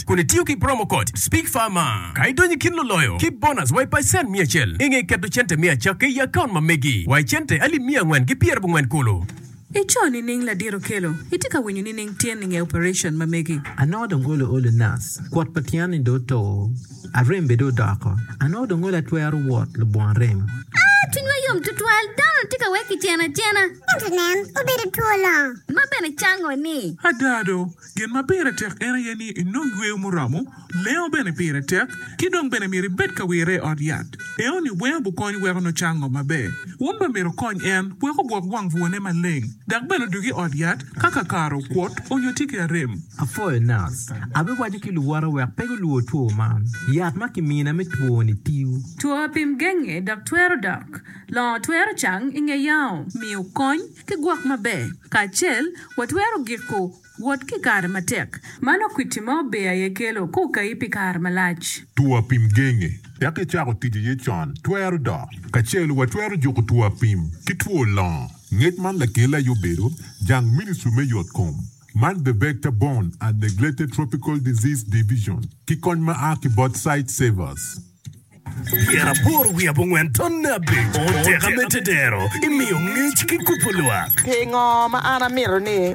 Act kun itiyo ki promo code SPEAKFARMA ka idonyo i kin luloyo ki bonus wa i pacen miya acel. I nge keto cente me acakki i akaunt ma megi wa i cente alip miya angwen ki pyerabongwen kulu. Ico nining ladit okelo? Itye ka winyo nining tyen i nge operation ma megi? Anongo dong olo olo nas, kwot pa tyen ni dong oto, arem bene dong odoko, anongo dong olo atwero wot lubongo arem. Aa, cwinywa yom tutwal, dano-ni tye ka wek kiceno acena. Ento nen, obedo two longo. Ma bene cango-ni. Ada do, Gin ma pire tek en aye ni inong yweyo muromo, lengo bene pire tek, ki dong bene myero ibed ka wirre i ot yat. Enoni weng gukony weko nucang ngo maber. Wun bene myero wukonny en wek ogwok wang bwone maleng, dok bene odug i ot yat ka kakare okwot onyo tye ki arem. Apwoyo Nas. Abiwaco ki luwote wek pe gulwor two man. Yat ma kimina me twoni tiyo. Two apim genge dok twero dok. Longo twero cang i nge yao. Miyo kony. Ki gwok maber kacel, watwero giko wot ki kare matek. Mano kwiti ma ober aye kelo ka okayi pi kare malac. Two apim genge wek icako tic iye con twero dok. Kacel watwero juko two apim ki two longo. Ngec man lakele aye obedo jang Ministry me Yot Kom man The Vector Borne and Neglected Tropical Disease Division ki kony ma a ki bot Sightsavers. Myero apor wi abongwen tonne abic. Oteka me tetero imiyo ngec ki kubo lwak. Pingo ma an amito ni